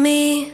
Mí.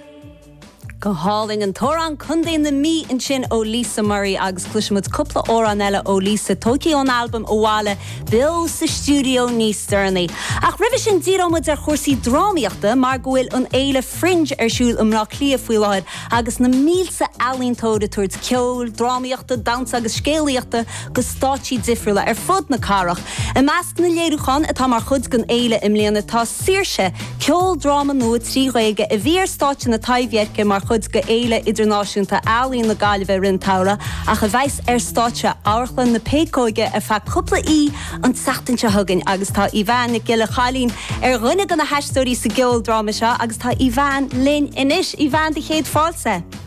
Go hálainn. An t-amhrán Condae na Mí ansin ó Lisa Murray agus cloisimid cúpla amhrán eile ó Lisa, tóigthe ón albam Abhaile, beo sa stiúideo níos deireanaí. Ach roimhe sin díreoimid ar chúrsaí drámaíochta mar go bhfuil an fhéile Fringe ar siúl i mBleá Cliath faoi láthair agus na mílte ealaíontóir ag tabhairt ceoil, drámaíochta, damhsa agus scéalaíochta go stáitsí difriúla ar fud na cathrach. I measc na léiriúchán atá mar chuid den fhéile i mbliana tá Saoirse? ceoldráma nua trí Ghaeilge a bhí ar stáitse na Taibhdheirce mar chuid de Fhéile Idirnáisiúnta Ealaíon na Gaillimhe i rith an tsamhraidh ach a bheas ar stáitse Amharchlann na Péacóige ar feadh cúpla oíche an tseachtain seo chugainn agus tá Aoibheann Nic Giolla Chailín ar dhuine de na haisteoirí sa gceoldráma seo agus tá Aoibheann linn anois. Aoibheann, do chéad fáilte!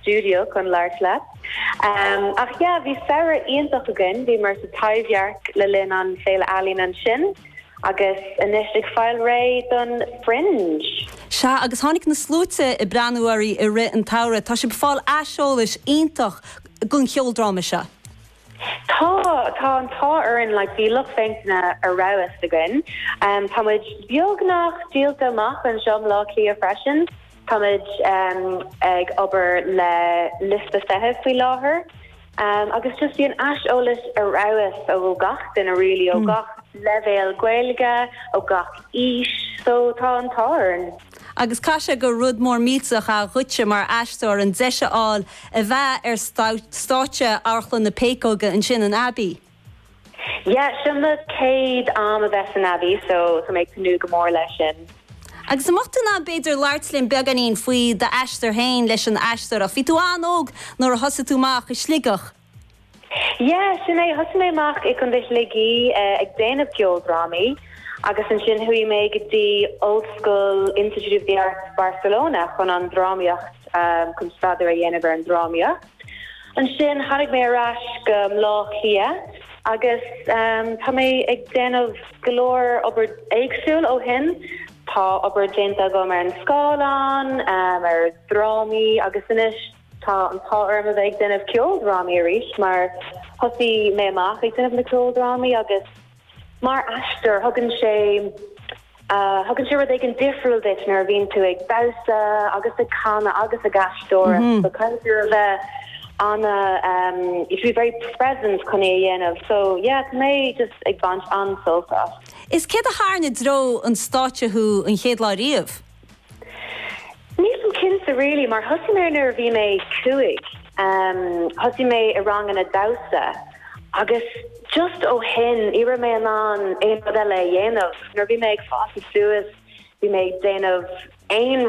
stiúideo chun labhairt leat. Ach yeah, bhí samhradh iontach againn, bhíomar sa Taibhdhearc le linn an Féile Ealaíon ansin agus anois ag fáil réidh don Fringe. Sea, agus tháinig na sluaite ag breathnú oraibh i rith an tsamhraidh. Tá sibh ag fáil aiseolais iontach den cheoldráma seo. Tá, tá an t-ádh orainn, like bhí lucht féachana ar fheabhas againn, tá muid beagnach díolta amach anseo i mBleá Cliath freisin, tá muid ag obair le liosta feithimh faoi láthair agus just bíonn aiseolas ar fheabhas ó gach duine really ó gach leibhéal Gaeilge, ó gach aois, so tá an t-ádh orainn. Agus caithfidh sé gur rud mór millteach a bhí dhuitse mar aisteoir an deis a fháil a bheith ar stáitse Amharchlann na Péacóige ansin san Abbey. Yeah, sin mo chéad am a bheith san Abbey so tá mé ag tnúth go mór leis sin. Agus an mbeadh tú in ann b'fhéidir labhairt linn beagáinín faoi d'aistear féin leis an aisteoireacht. Bhí tú an-óg nuair a thosaigh tú amach i Sligeach. Yeah, sin é. Thosaigh mé amach i gContae Shligigh ag déanamh ceoldrámaí agus ansin chuaigh mé go dtí Ollscoil Institute of the Arts Barcelona chun an drámaíocht, chun staidéar a dhéanamh ar an drámaíocht. Ansin tháinig mé ar ais go Bleá Cliath agus tá mé ag déanamh go leor obair éagsúil ó shin. Tá obair déanta agam ar an scáileán, ar dhrámaí agus anois. Tá an t-ádh orm a bheith ag déanamh ceoldrámaí arís mar thosaigh mé amach ag déanamh na ceoldrámaí agus mar aisteoir thugann sé thugann sé rud éigin difriúil duit nuair a bhíonn tú ag damhsa agus ag canadh agus ag aisteoireacht so caithfidh tú a bheith an- em you should be very present chun é a dhéanamh so yeah tá mé just ag baint an-sult as. Is céard a tharraing i dtreo an stáitse thú an chéad lá riamh? Nílim cinnte really mar thosaigh mé nuair a bhí mé cúig, thosaigh mé i ranganna damhsa agus just ó shin ní raibh mé in ann aon rud eile a dhéanamh. Nuair a bhí mé ag fás suas bhí mé ag déanamh aon